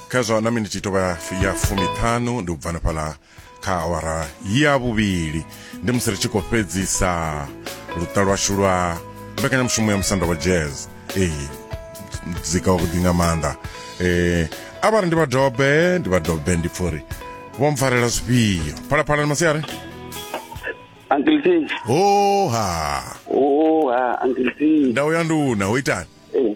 khazwo na miniti tovha ya fumiṱhanu ndi u bvana fhala kha awara ya vhuvhili ndi musi ri tshi khou fhedzisa luṱa lwashu lwa mbekanyamushumo ya musanda wa jazz ee muzika wavhuḓi nga maanḓa um a vha ri ndi vhadobe ndi vhadobe ndi pfha uri vho mpfarela zwifhio phalaphala ni masiari Uncle T. hoha Oha, Uncle T. ndau ya nduna ho itani Eh,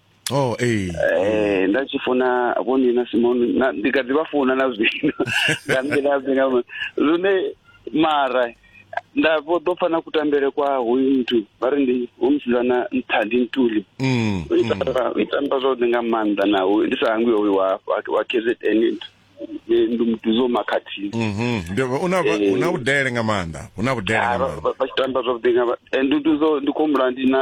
oh ee eh nda tshi funa vho ni na simoni na ndi kha ḓi vha funa na zwino nga nḓila dzi nga lune mara nda vho ḓo pfa na kutambele kwa hoyu muthu vha ri ndi u musidzana nthandi ntuli mm, u mm. tamba- u itamba zwavhuḓi nga maanḓa naho ndi sa hangwi hoyu wa wa- wa kzn ndi ndi mutuzo makhathini mhm ndi una Eh. una vhudele nga maanḓa una vhudele nga Ah, vha- maanḓa vha- vha tshi tamba zwavhuḓi nga ma- eh, ndi ndi zwo- ndi khou humbula ndi na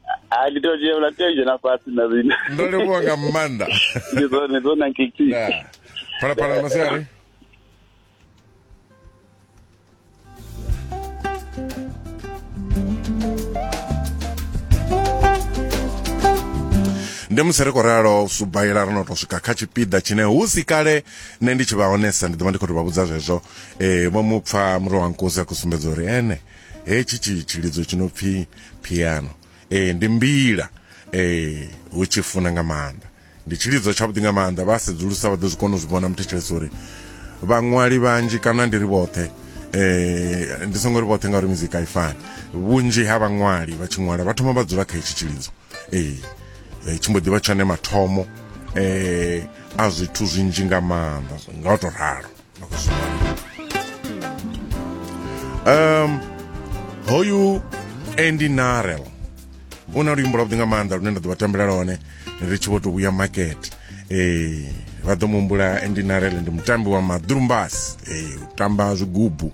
Ah, ndi to dzhia vhula tea dzhena fhasi na zwino ndo livhuwa nga maanḓa ndi zwone dzo na nkiki Da. phalaphala masiari ndi musi ri khou ralo subaila ro no tou swika kha tshipiḓa tshine hu si kale nṋe ndi tshi vha honesa ndi ḓo vha ndi khou tou vha vhudza zwezwo um vho mu pfa muro wa nkosi a khou sumbedza uri ene hetshi tshi tshilidzo tshi no pfhi piano ee ndi mbila ee hu tshi funa nga maanḓa ndi tshilidzo tshavhuḓi nga maanḓa vha sedzulusa vha ḓo zwi kona u zwi vhona muthetshelesi uri vhaṅwali vhanzhi kana ndi ri vhoṱhe eh ndi songo ri vhoṱhe ngauri muzika i fani vhunzhi ha vhaṅwali vha tshi ṅwala vha thoma vha dzula kha itshi tshilidzo ee eh, tshi mbo ḓi vha tshone mathomo eh a zwithu zwinzhi nga maanḓa nga u to ralo um hoyu andy narel u na luimbo lwavhuḓi nga maanḓa lune nda ḓo vha tambela lone ri tshi vho tou vhuya makete ee eh, vha ḓo muhumbula andy narel ndi mutambi wa maḓurumbasi ee eh, u tamba zwigubu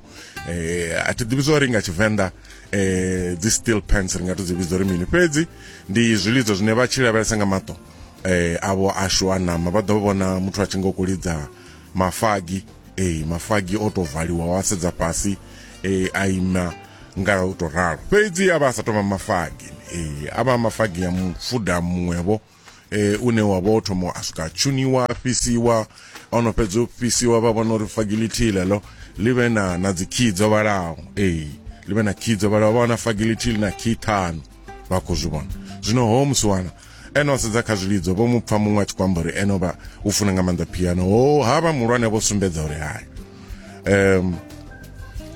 ee eh, a thi ḓivhi zwa uri nga tshivenḓa eh dzi steel pants ri nga to dzi vhidza uri mini fhedzi ndi zwilidzo zwine vha tshi lavhelesa nga maṱo eh avho ashu a nama vha ḓo vhona muthu a tshi ngo kulidza mafagi ee mafagi o tou valiwa wa sedza fhasi ee a ima nga u tou ralo fhedzi a vha a sa tovha mafagi ee a vha mafagi ya mufuda muṅwevho eh une wa vho thoma a swika tshuniwa fhisiwa ono fhedza u fhisiwa vha vhona uri fagi lithihi ḽeḽo ḽi vhe na na dzikhiyi dzo vhalaho ee ḽi vhe na khiyi dzo vhalaho vha wana fagi lithihi ḽi na khiyi ṱhanu vha khou zwi vhona zwino ho musi wana Ene o sedza kha zwilidzo, vho mu pfa muṅwe a tshi khou amba uri ene o vha u funa nga maanḓa piano. Ho ha vha muhulwane vho sumbedza uri hai. Um,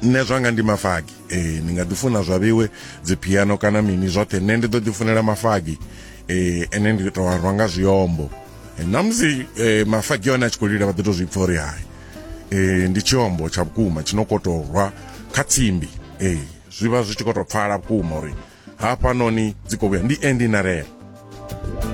nṋe zwanga ndi mafagi e, ni nga ḓifuna zwa vhewe dzipiano kana mini zwoṱhe nṋe ndi ḓo ḓifunela mafagi e, ene ndi tou a rwa nga zwiombo e, na musi e, mafagi one a tshi khou lila vha ḓi tou zwi pfa uri hai e, ndi tshiombo tsha vhukuma tshi no kotorwa kha tsimbi e. zwi vha zwi tshi khou tou pfala vhukuma uri hafhanoni dzi khou vhuya ndi endinarela